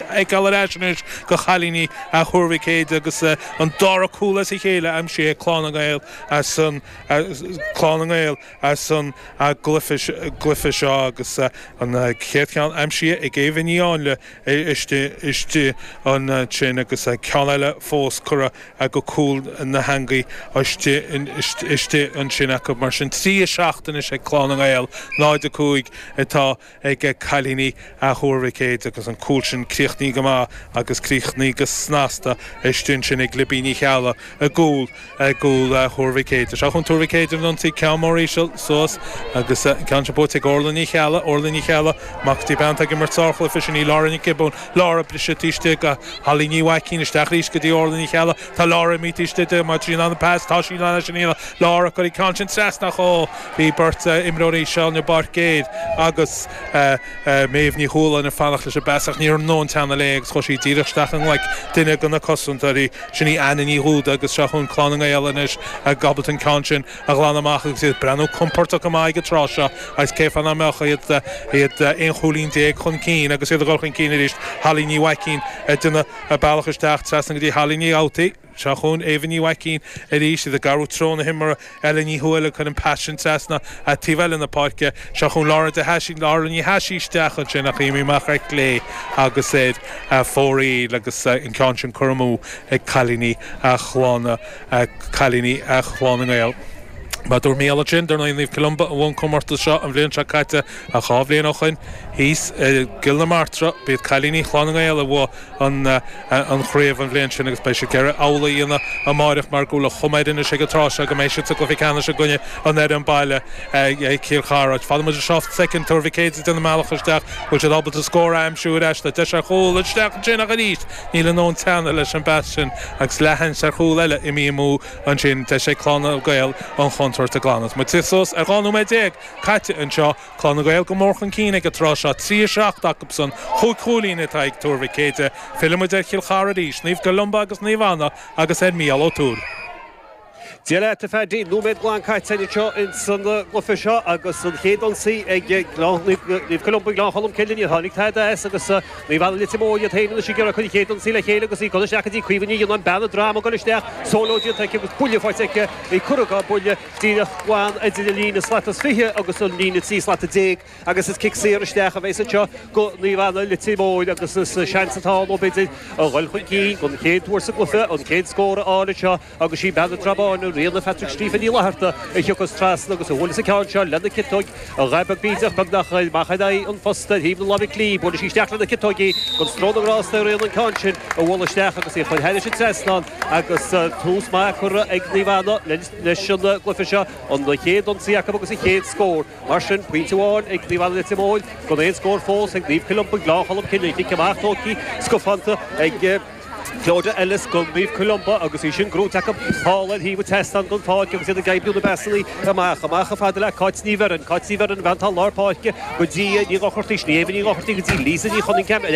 fheiceáil ar ais anois go chailíní Thuar Mhic Éadaigh agus an dara cúl as a chéile aimsithe ag Clann na nGael as an Clann na nGael as an gcluiche seo agus an chéad cheann aimsithe ag Éabha Ní Áinle istigh ansin agus ceann eile fós curtha go cúl na heangaí istigh ansin acu. Mar sin, trí a seacht anois ag Clann na nGael, 0-5 atá. ag cailíní Thuar Mhic Éadaigh agus an cúl sin críochnaithe go maith agus críochnaithe go snasta istigh ansin ag Libby Ní Cheallaigh i gcúl i gcúl Thuar Mhic Éadaigh. Seo chugainn Tuar Mhic Éadaigh ar an ionsaí, ceann mór íseal suas agus an ceann sin buaite ag Orla Ní Cheallaigh Orla Ní Cheallaigh, amach go dtí bean atá ag imirt sárchluiche sin í Laura Nic Giobúin Laura, briseadh taobh istigh go Holly Ní Mhaicín, isteach arís go dtí Orla Ní Cheallaigh. Tá lár an mhiotais de dhíomá trí na Pats, tá sí lán leis an fhírinne Laura ag cur an ceann sin trasna ach ó bhí beirt imreoirí, Shaun Burke Aid agus Méabh Ní Chualáin, ag fanacht leis an bpas ach ní raibh in ann teannadh léi agus chuaigh sí díreach isteach i nglaic duine de na cosantóirí, sin í Anna Ní Dhubhda agus seo chugainn Clann na nGael anois ábalta an ceann sin a ghlanadh amach agus iad ag breathnú compordach go maith ag an tráth seo agus cén fáth nach mbeadh iad aon chúilín déag chun cinn agus iad ag dhul chun cinn arís, Holly Ní Mhaicín ag déanamh a bealach isteach, trasna go dtí Hallaí Ní Dhubhtaí, seo chugainn Éabha Ní Mhaicín arís, iad ag athrú treo na himeartha, Ella Ní Thuathail ag cur an pas sin trasna an taobh eile na páirce, seo chugainn Laura, Laura Ní Thaisí isteach ansin ach imithe amach ar chlé agus ar fóraoil agus an ceann sin curtha amú ag cailíní Chlanna, cailíní Chlann na nGael. Mar a dúirt Mícheál ansin, dar ndóigh, Naomh Columba a bhuaigh an comórtas seo an bhliain seo caite, Ach dhá bhliain ó shoin, thíos i gCill na Martra, b'iad cailíní Chlann na nGael a bhuaigh an chraobh an bhliain sin agus beidh siad ag iarraidh amhlaidh a dhéanamh amáireach mar go bhfuil an chuma air anois ag an tráth seo go mbeidh siad sa gcluiche ceannais i gcoinne an fhoireann baile, Cill Chartha. Fanann muid anseo soicind. Tuar Mhic Éadaigh ag déanamh a mbealach isteach. An bhfuil siad ábalta scór a aimsiú ar ais? Tá deis ar chúl. Isteach ansin ach arís níl in ann teannadh leis an bpas sin agus leath-sheans ar chúl eile imithe amú ansin. Deis ag Clann na nGael an chontúirt a ghlanadh. Tá muid suas ar dhá nóiméad déag. caite anseo, Clann na nGael go mór chun cinn ag an tráth seo, 3-7 acubsan, chúig chúilín atá ag Tuar Mhic Éadaigh. Fillimid ar Chill Chartha arís, Naomh Columba agus Naomh Anna agus ar Mhícheál Ó Tuathail. Dia leat, a Phaddy. Nóiméad glan caite anseo ins an gcluiche seo agus an chéad ionsaí ag Naomh Columba Gleann Cholm Cille. Níor tháinig tada as agus Naomh Anna Leitir Móir iad féin anois ag iarraidh a gcuid chéad ionsaí le chéile agus í curtha isteach go dtí Caoimhe Ní Ghionnáin. Bean an Droma ag goil isteach, sóló déanta aici agus buille faighte aici, í curtha dá buille. díreach glan idir an líne slat is fiche agus an líne trí slata déag, agus is cic saor isteach a bheas anseo go Naomh Anna, Leitir Móir, agus is seans atá ann, ann b'fhéidir, a dhul chun cinn don chéad uair sa gcluiche, an chéad scór a fháil anseo, agus sí bean na Trá Báine, Ríona Phatrick Stiofáin Ní Fhlatharta, a thiocfas trasna agus a bhuaileas an ceann seo lena ciotóg, a dhul beag bídeach, beagnach amach in aghaidh an phosta ar thaobh na láimhe clí, buaileann sí isteach lena ciotóg í, gan stró na ngrásta ar Ríona an ceann sin a bhualadh isteach agus í a chur thairis an trasnán, agus tús maith curtha ag Naomh Anna le leis an gcluife seo, an chéad ionsaí acu agus an chéad scór. Mar sin, pointe amháin ag Naomh Anna Leitir Móir gan aon scór fós ag Naomh Columba, Gleann Cholm Cille. An cic amach tógtha scafánta ag Clodagh Ellis do Naomh Columba agus í sin grúite acu. Thall ar thaobh an tseastáin don pháirc agus iad ag oibriú na bpasannaí amach. Amach chomh fada le Cáit Ní Bheirn. Cáit Ní Bheirn, an bhean atá lár páirce, go dtí Ní Dhochartaigh, Ailbhe Ní Dhochartaigh go dtí Lisa Ní Chonningham, ar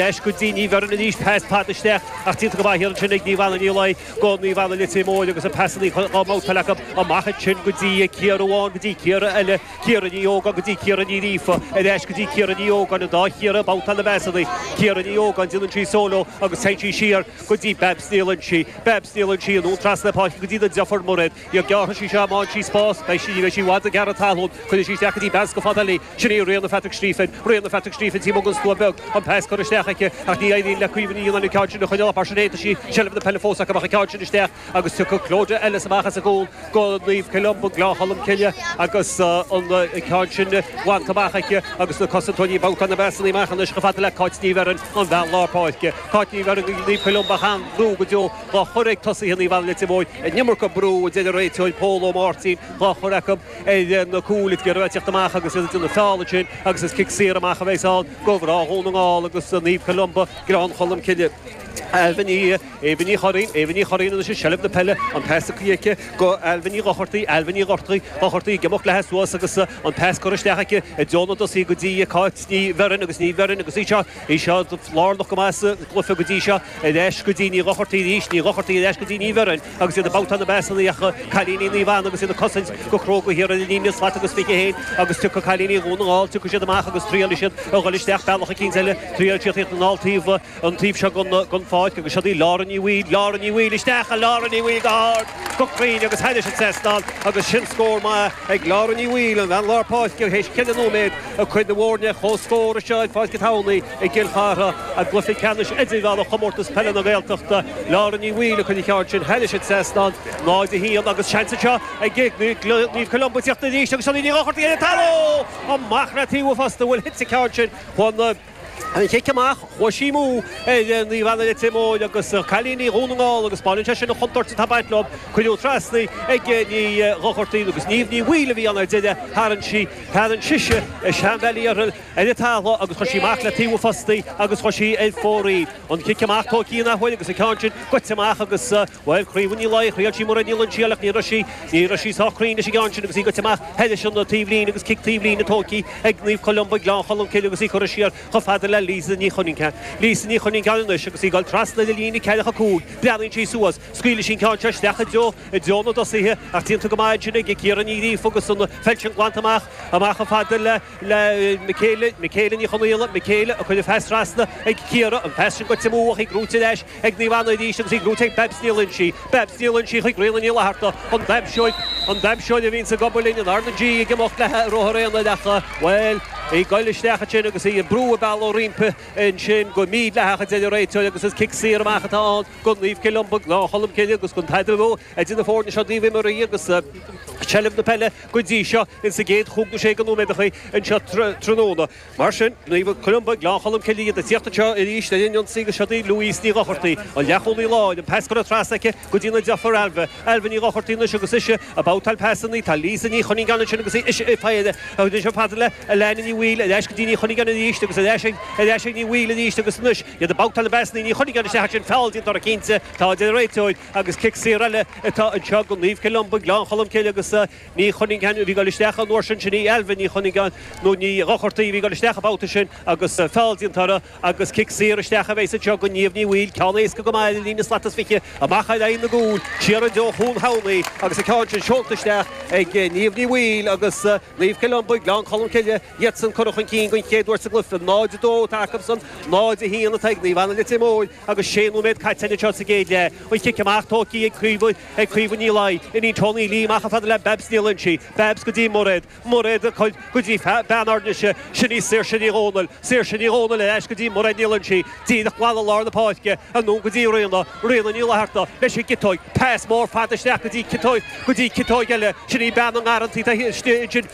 ais go dtí Ní Bheirn arís, pas fada isteach ach déanta go maith ansin ag Naomh Anna. Go Naomh Anna Leitir Móir agus na pasannaí dhá mbabhtáil acu amach ansin ó Ciara amháin go dtí Ciara eile, Ciara Ní Ógáin go dtí Ciara Ní Ghríofa, ar ais go dtí Ciara Ní Ógáin, an dá Chiara ag babhtáil na bpasannaí. Ciara Ní Ógáin, déanann sí sóló agus téann sí siar go dtí Babs Ní Loinsí. Babs Ní Loinsí, anonn trasna páirce go dtí a deirfiúr Mairéad. Gearrfaidh sí seo má fhaigheann sí spás, beidh sí, ní bheidh sí i bhfad ag gearradh talún. Cuireann sí isteach an pas chomh fada le. Sin í Ríona Phatrick Stiofáin, Ríona Phatrick Stiofáin taobh amuigh den stua beag, an pas curtha isteach aici, ach ní éiríonn le Caoimhe Ní Fhionnáin an ceann sin a choinneáil, mar sin féin tá seilbh na peile fós aici, an ceann sin isteach agus tiocfaidh Clodagh Ellis amach as an gcúl go Naomh Columba, Gleann Cholm Cille agus an ceann sin bainte amach aici agus na cosantóirí ag babhtáil na bpasanna amach anois chomh fada le Cáit Ní Bheirn, an bhean lár páirce. Cáit Ní Bheirn, Naomh Columba, an-bhrú go deo dhá chur ag tosaithe Naomh Anna Leitir Móir, an iomarca brú a deir an réiteoir Pól Ó Máirtín dhá chur acu, ar na cúil atá ag iarraidh a thíocht amach agus iad dhá bhfeáláil ansin agus is cic saor amach a bheas ann do mhná Dhún na nGall agus Naomh Columba, Gleann Cholm Cille. Ailbhe Ní, Aoibhinn Ní Churraoin, Aoibhinn Ní Churraoin anois i seilbh na peile, an pas curtha aici go Ailbhe Ní Dhochartaigh, Ailbhe Ní Dhortaigh, Dhochartaigh ag imeacht léi suas agus an pas curtha isteach aici i dtreo na dtosaithe go dtí Cáit Ní Bheirn agus Ní Bheirn agus í seo, í seo lárnach go maith sa gcluiche go dtí seo, ar ais go dtí Ní Dhochartaigh arís, Ní Dhochartaigh ar ais go dtí Ní Bheirn. agus iad ag babhtáil na bpasanna ach cailíní Naomh Anna agus iad ag cosaint go cróga thiar ina líne slat agus fiche féin agus tiocfaidh cailíní Dhún na nGall, tiocfaidh siad amach agus triailfidh siad a dhul isteach bealach eicínt eile, triail a thíocht aníos an taobh an taobh seo den pháirc agus siod í Lára Ní Bhaoill, Lára Ní Bhaoill isteach a Lára Ní Bhaoill go hard, go cruinn agus thairis an trasnán agus sin scór maith ag Lára Ní Bhaoill, an bhean lár páirce, théis cheithre nóiméad ag cur na bhfoirne, comhscór anseo i bPáirc an Tamhnaigh. i gCill Chartha, i gcluiche ceannais idirmheánach Chomórtas Peile na Gaeltachta, Lára Ní Bhaoill a chuir an ceann sin thairis an trasnán, 0-1, agus seans anseo ag Naomh Columba ag teacht arís agus Seonaidh Ní Dhochartaigh ar an talamh! Amach le taobh an phosta, bhuail Hitz an ceann sin chun an chic amach, chuaigh sí amú ar Naomh Anna Leitir Móir agus cailíní Dhún na nGall agus spáineann sé sin an chontúirt atá ag baint leo, cuireadh trasna ag Ní Dhochartaigh agus Niamh Ní Bhaoill a bhí ann ar deireadh, tharraing sí, tharraing sise seanbhealaí orthu. ar an talamh agus chuir sí amach le taobh an phosta í agus chuir sí ar fóraoil í. An cic amach tóigthe in athuair agus an ceann sin goite amach agus, bhuel, Caoimhe Ní Laidhe, thriail sí Mairéad Ní Loingsigh ach ní raibh sí, ní raibh sí sách cruinn leis an gceann sin agus í goite amach thairis an taobhlíne agus cic taobhlíne tóigthe ag Naomh Columba, Gleann Cholm Cille agus í curtha siar chomh fada le Lisa Ní Chuinneagáin, Lisa Ní Chuinneagáin anois agus í ag dul trasna an líne ceathracha a cúig, breathnaíonn sí suas, scaoileann sí an ceann seo isteach i dtreo, i dtreo na dtosaithe ach déanta go maith ansin ag Ciara Ní Ghríofa agus an pheil sin glanta amach, amach chomh fada le. le Michaelia Michaelia Ní Chonaola Michaelia a cuireadh pas trasna ag Ciara, an pas sin goite amú, í brúite ar ais ag Naomh Anna arís agus í brúite ag Babs Ní Loingsigh Babs Ní Loingsigh chuig Ríona Ní Fhlatharta, an damhsóir, an damhsóir a bhíonns ag obair linn in RnaG ag imeacht le ruathar aonair, bhuel, í ag goil isteach ansin agus í ag brú a bealaigh roimpi ansin go mídhleathach a deir an réiteoir agus is cic saor amach atá ann go Naomh Columba Gleann Cholm Cille agus gan tada idir na foirne seo ó thaobh imeartha agus seilbh na peile Go dtí seo, ins an gcéad chúig nó sé go nóiméadacha anseo tráthnóna, mar sin, Naomh Columba, Gleann Cholm Cille iad ag tíocht anseo arís ar an ionsaí agus seo í Louise Ní Dhochartaigh, an leathchúlaí láir, an pas curtha trasna aici go dtí a deirfiúr Ailbhe, Ailbhe Ní Dhochartaigh anois agus ise ag babhtáil pasannaí, tá Lisa Ní Chuinneagáin ansin agus ise í féin a thug an phaidrín le Elaine Ní Bhaoill, ar ais go dtí Ní Chuinneagáin arís agus ar ais ar ais ag Ní Bhaoill arís agus anois iad ag babhtáil na bpasannaí, Ní Chuinneagáin isteach ansin, feall déanta uirthi cinnte, a deir an réiteoir. agus cic saor eile atá anseo go Naomh Columba, Gleann Cholm Cille agus Ní Chuinneagáin a bhí ag dul isteach an uair sin. Sin í Ailbhe Ní Chuinneagáin, nó Ní Dhochartaigh, a bhí ag dul isteach an babhta sin agus feall déanta uirthi agus cic saor isteach a bheidh anseo go Niamh Ní Bhaoill, ceann éasca go maith le líne slat is fiche amach ar aghaidh na gcúl. Siar i dtreo Chuan Thamhnaigh agus an ceann sin seolta isteach ag Niamh Ní Bhaoill agus Naomh Columba, Gleann Cholm Cille, iadsan curtha chun cinn den chéad uair sa gcluiche. 0-2 atá acusan, 0-1 atá ag Naomh Anna Leitir Móir. Agus sé nóiméad caite anseo sa gcéad leath, an cic amach tógtha ag Caoimhe Ní Laidhe, iníon Toni Leigh amach chomh fada le Babs Ní Loingsigh, Babs go dtí Mairéad, Mairéad go dtí bean ár nDéise, sin í Saoirse Ní Dhomhnaill, Saoirse Ní Dhomhnaill ar ais go dtí Mairéad Ní Loingsigh, díreach glan i lár na páirce, anonn go dtí Ríona, Ríona Ní Fhlatharta leis an gciotóig, pas mór fada isteach go dtí ciotóg eile, sin í bean na ngarrantaí taobh istigh ansin.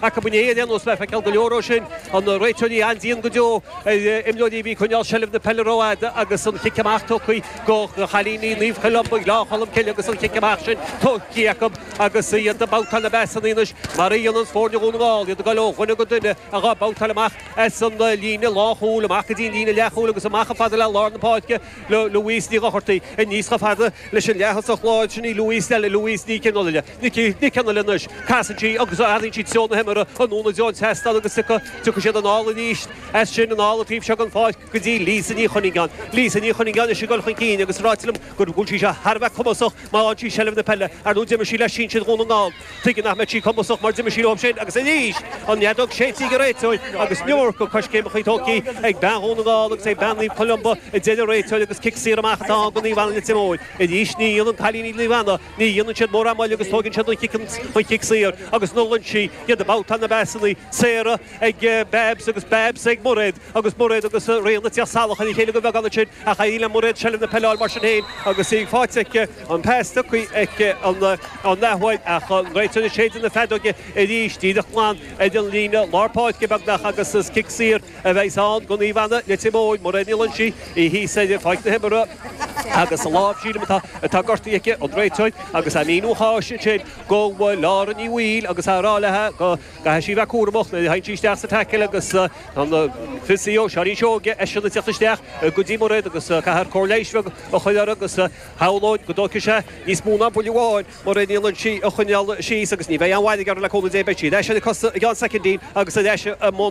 acu inniu Leanas, le feiceáil go leor ó sin, an réiteoir an-dian go deo ar imreoirí a bhí ag coinneáil seilbh na peile rófhada agus an chic amach tugtha do chailíní Naomh Columba, Gleann Cholm Cille agus an chic amach sin tugtha acu agus iad ag babhtáil na bpasannaí anois mar a dhéanann foirne Dhún na nGall, iad ag dul ó dhuine go duine ag babhtáil amach as an líne lánchúil, amach go dtí an líne leathchúil agus amach chomh fada le lár na páirce, Louise Ní Dhochartaigh aníos chomh fada leis an leaththosach láir sin í Louise eile, Louise Nic Fhionnghaile. Nic Fhionnghaile anois. Casann sí agus athraíonn sí treo na himeartha anonn i dtreo an tseastáin agus tiocfaidh siad anall arís, as sin anall an taobh seo den pháirc go dtí Lisa Ní Chuinneagáin. Lisa Ní Chuinneagáin anois ag dul chun cinn agus ráite liom go bhfuil sí seo thar a bheith cumasach má fhaigheann sí seilbh na peile, ar ndóigh d'imir sí le sinsir Dhún na nGall. Tuige nach mbeadh sí cumasach mar d'imir sí leo ansin agus arís! An fheadóg séidte ag an réiteoir agus an iomarca coiscéimí tógtha ag bean Dhún na nGall agus ag bean Naomh Columba a deir an réiteoir agus cic saor amach atá ann do Naomh Anna Leitir Móir. Arís ní dhéanann cailíní Naomh Anna Ní dhéanann siad mórán moille agus tógann siad an chicken, an chic saor, agus ní Loingsigh, iad ag babhtáil na bpasannaí, Sarah ag Babs agus Babs ag Mairéad, agus Mairéad agus Ríona ag tíocht salach ar a chéile de bheagán ansin, ach éiríonn le Mairéad seilbh na peile a fháil mar sin féin agus í faighte agus an pas tugtha aici ag an leathúlaí, ach an réiteoir ag séideadh na feadóige arís, díreach glan ar an líne lár páirce beagnach agus is cic saor a bheidh ann do Naomh Anna Leitir Móir Mairéad Ní Loingsigh í thíos ar pháirc na himeartha agus is í a lámh, sílim, atá gortaithe aici an réiteoir agus an míniú atá ansin go bhfuil Lára Ní Bhaoill agus á rá leithe go gcaithfidh sí a bheith cúramach nuair a théann sí isteach sa tackle agus an physio, Seáinín Seoige, eisean ag teacht isteach go dtí Mairéad agus caithfear cóir leighis bheag a chur uirthi agus shamhlóinn go dtógfaidh sé níos mó ná buille amháin Mairéad Ní Loingsigh a choinneáil síos agus ní bheidh aon mhairg uirthi le cúnamh Dé beidh sí ar ais ar a cosa i gceann soicindín agus ar ais i mbun